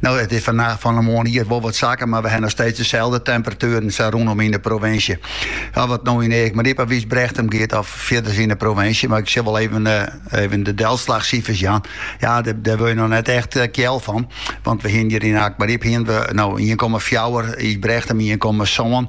No, it is fannacht, fan 'e moarn ier wol wat sakke, mar we ha noch steeds deselde temperatueren sa rûnom yn 'e provinsje. Of it no yn Eagmaryp of Ysbrechtum giet of fierders yn 'e provinsje, mar ik sil wol even even de delslachsifers jaan. Ja, dêr wurde je noch net echt kjel fan, want we hienen hjir yn Eagmaryp hienen we no ien komma fjouwer, Ysbrechtum ien komma sân.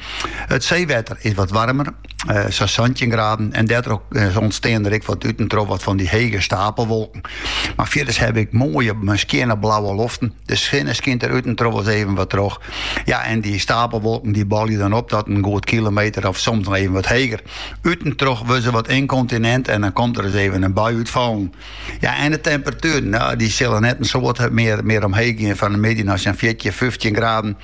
It seewetter is wat waarmer, sa santjin graden, en dêrtroch ûntstean der ek wat út en troch wat fan dy hege stapelwolken. Mar fierders hawwe wy moaie, skjinne blauwe loften. De sinne skynt der út en troch wolris even wat troch. Ja, en dy stapelwolken dy bolje dan op tot in goed kilometer of soms noch even wat heger. Ut en troch wurde se wat ynkontinint en dan komt der ris even in bui út fallen. Ja, en de temperatueren, dy sille net in soad mear omheech gean fan 'e middei nei sa'n fjirtjin, fyftjin graden.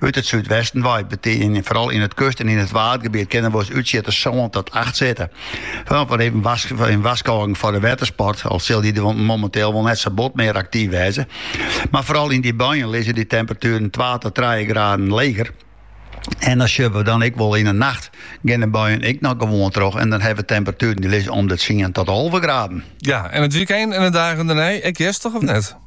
Ut it súdwesten wei bytiden foaral yn it kust- en yn it waadgebiet kinne wolris útsjitters sân tot acht sitte. Fandêr even in warskôging foar de wettersport, al sil dy der momenteel wol net sa bot mear aktyf wêze. Mar foaral yn dy buien lizze dy temperatueren twa tot trije graden leger. En dan sjogge we dan ek wol yn 'e nacht gean de buien ek noch gewoan troch. En dan hawwe we temperatueren dy lizze om de tsien tot alve graden. Ja, en it wykein en de dagen dêrnei ek hjerstich of net?